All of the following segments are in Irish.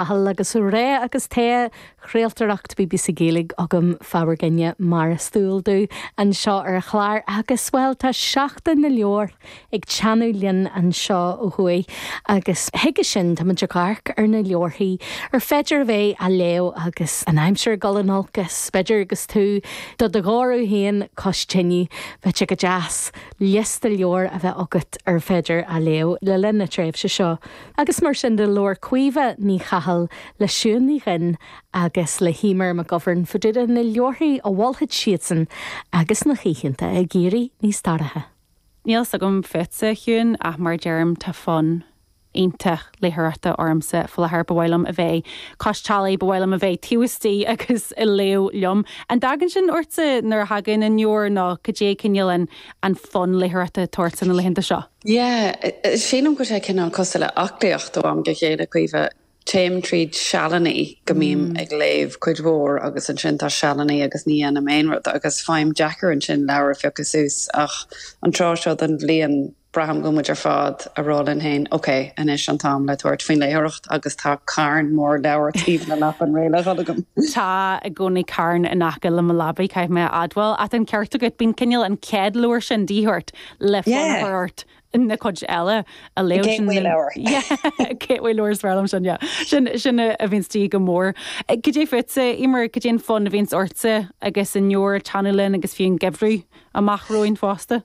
Cathal agus Ray agus tae, chraoltóireacht bbc Gaeilge agam fabhar gainne mar is dual dó, anseo ar an chlár agus bhuel tá Seachtain na Leabhar ag teannadh linn anseo ó thuaidh agus chuige sin tá muid ag amharc ar na leabharthaí ar féidir a bheith á léamh agus an aimsir ag dul in olcas b'fhéidir agus tú do do ghoradh féin cois tine, bheadh sé go deas liosta leabhar a bheith agat ar féidir a léamh le linn na tréimhse seo. Agus mar sin de, labhair Caoimhe Ní Chathail le Siún Ní Dhuinn agus le hEimear McGovern fá dtaobh de na leabharthaí a mholfadh siadsan agus na hoícheanta ag éirí níos dorcha. Níl fhios agam fút, a Shiún, ach mar a deirim, tá fonn iontach léitheoireachta ormsa faoi láthair. Ba mhaith liom a bheith cois teallaigh, ba mhaith liom a bheith taobh istigh agus ag léamh liom. An dtagann sin ortsa nuair a thagann an fómhar nó cad é cineál an fonn léitheoireachta atá ortsa na laethanta seo? Yeah, sílim go bhfuil sé cineál cosúil le aclaíocht ó am go chéile, Caoimhe. Téim tríd sealanna go mbím ag léamh cuid mhór agus ansin tá sealanna agus ní dhéanaim aon rud agus faighim deacair ansin leabhar a phiocadh suas ach an tráth seo den bhliain braithim go muid ar fad ag rá linn féin ok, anois an t-am le tabhairt faoin léitheoireacht agus tá carn mór leabhar taobh le leapan réidh le dhul agam. Tá i gcónaí carn in aice le mo leabaidh, caithfidh mé a admháil, ach tá an ceart agat, bíonn cineál an chéad leabhar sin díth ort le fonn a chur ort na cuid eile a léamh. Sin an gateway leabhar is fearr liom sin, yeah. Sin, sin a bhíonns de dhíth go mór. Cad é fútsa, Eimear, cad é an fonn a bhíonns ortsa agus an fómhar ag teannadh linn agus fiú an geimhreadh amach romhainn fosta?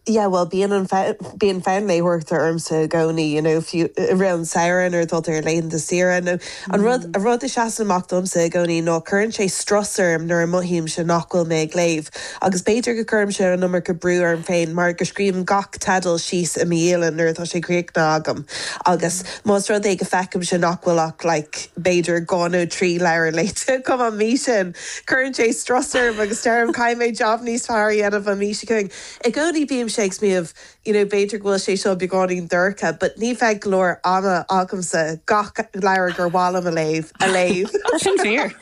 Yeah, bhuel, bíonn an fonn, bíonn fonn léitheoireachta ormsa i gcónaí, you know, fiú i rith an samhradh nuair atá tú ar laethanta saoire nó. An rud, an rud a seasann amach domsa i gcónaí ná cuireann sé strus orm nuair a mothaímse nach bhfuil mé ag léamh. Agus b'fhéidir go gcuirimse an iomarca brú orm féin mar go scríobhaim gach teideal síos i mo dhialann nuair atá sé críochnaithe agam agus más rud é go feicimse nach bhfuil ach like b'fhéidir dhá nó trí leabhar léite agam an mhí sin, cuireann sé strus orm agus deirim caithfidh mé jab níos fearr a dhéanamh an mhí seo chugainn. I gcónaí bímse ag smaoineamh. you know b'fhéidir go bhfuil sé seo beagáinín dorcha but ní bheidh go leor ama agamsa gach leabhar gur mhaith liom a léamh a léamh. Tá sin fíor.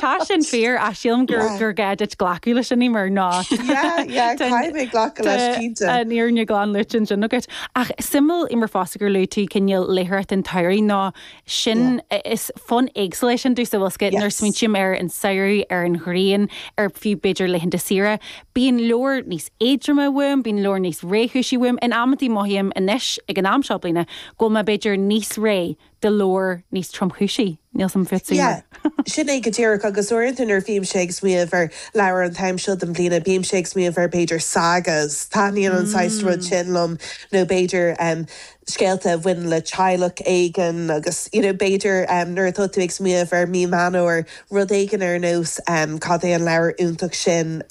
Tá sin fíor ach sílim gur gur gá duit glacadh leis sin Eimear, ná Yeah, yeah, caithfidh mé glacadh leis cinnte. An fhírinne glan luaite ansin agat. Ach suimiúil Eimear fosta gur luaigh tú cineál léitheoireacht an tsamhraidh nó sin, is fonn éagsúil é sin, domhsa, bhfuil fhios agat, nuair a smaointím ar an samhradh, ar an ghrian, ar fiú b'fhéidir laethanta saoire, bíonn leabhair níos éadroime uaim, bíonn leabhair níos réchúisí uaim, in amantaí mothaím anois, ag an am seo bliana, go bhfuil mé b'fhéidir níos réidh do leabhar níos tromchúisí, níl 's a'm fiú cad é. Sin é go díreach, agus uaireanta nuair a bhímse ag smaoineamh ar leabhair an t-am seo den bhliana, bímse ag smaoineamh ar b'fhéidir sagas, taitníonn an saghas rud sin liom, nó b'fhéidir, scéalta a bhaineann le teaghlach éigin agus you know b'fhéidir nuair atá tú ag smaoineamh ar Mí Mheán Fómhair rud éigin ar nós cad é an leabhar iontach sin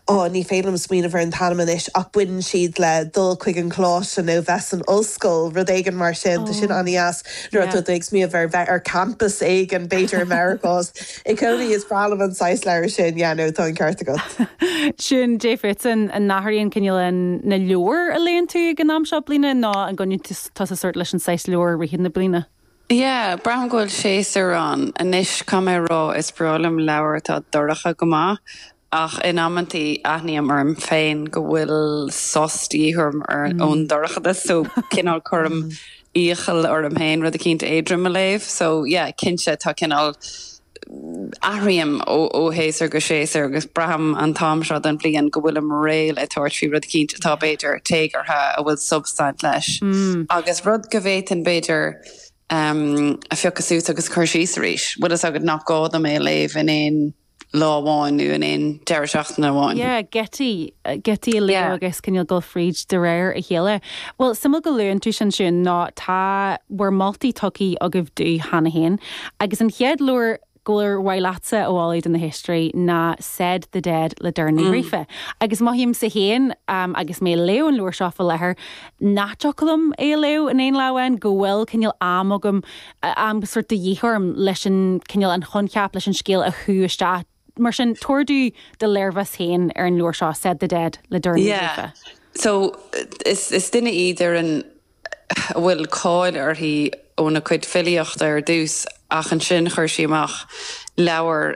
oh ní féidir liom smaoineamh ar an t-ainm anois ach baineann siad le dul chuig an choláiste nó bheith san ollscoil rud éigin mar sin tá sin an-deas nuair atá tú ag smaoineamh ar bheith ar campas éigin b'fhéidir i Meiriceá I gcónaí is breá liom an saghas leabhair sin, yeah no, tá an ceart agat. Siún céard fútsa, an n-athraíonn cineál na leabhar a léann tú ag an am seo den bhliain nó an gcoinníonn tusa sórt leis an saghas leabhar i rith na bliana? Yeah, braithim go bhfuil séasúr ann. Anois, caithfidh mé a rá, is breá liom leabhair atá dorcha go maith, ach in amantaí aithním orm féin go bhfuil sos de dhíth orm ón dorchadas, so cineál cuirim iallach orm féin rud eicínt éadrom a léamh, so yeah cinnte tá cineál, athraím ó shéasúr go séasúr agus braithim an t-am seo den bhliain go bhfuilim réidh le tabhairt faoi rud eicínt atá b'fhéidir téagartha, a bhfuil substaint leis agus rud go bhféadfainn b'fhéidir a phiocadh suas agus a chur síos arís, bhfuil fhios agat nach gá dom é a léamh in aon lá amháin nó in aon deireadh seachtaine amháin. Yeah, go dtig, go dtig é a léamh agus cineál dul fríd de réir a chéile. Bhuel, suimiúil go luann tú sin Siún, nó tá bhur moltaí tugthaí agaibh domh cheana féin. Agus an chéad leabhar gur mhaith leatsa a mholadh do na héisteoirí ná Said the Dead le Doireann Ní Ghríofa. Agus mothaímse féin, agus mé a léamh an leabhar seo fá láthair, nach dtiocfadh liom é a léamh in aon lá amháin, go bhfuil cineál am agam am sórt de dhíth orm leis an cineál, an coincheap, leis an scéal a shú isteach. Mar sin, tabhair do do léirmheas féin ar an leabhar seo, Said the Dead le Doireann Ní Yeah. Ghríofa. So, is is duine í Doireann a bhfuil cáil uirthi óna cuid filíochta ar dtús ach ansin chuir sí amach leabhar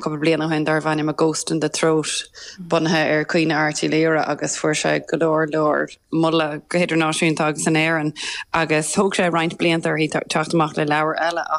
cúpla bliain ó shin darbh ainm A Ghost in the Throat bunaithe ar Caoineadh Airt Uí Laoghaire agus fuair sé go leor leor moladh go hidirnáisiúnta agus in Éirinn agus thóg sé roinnt blianta uirthi teacht amach le leabhar eile.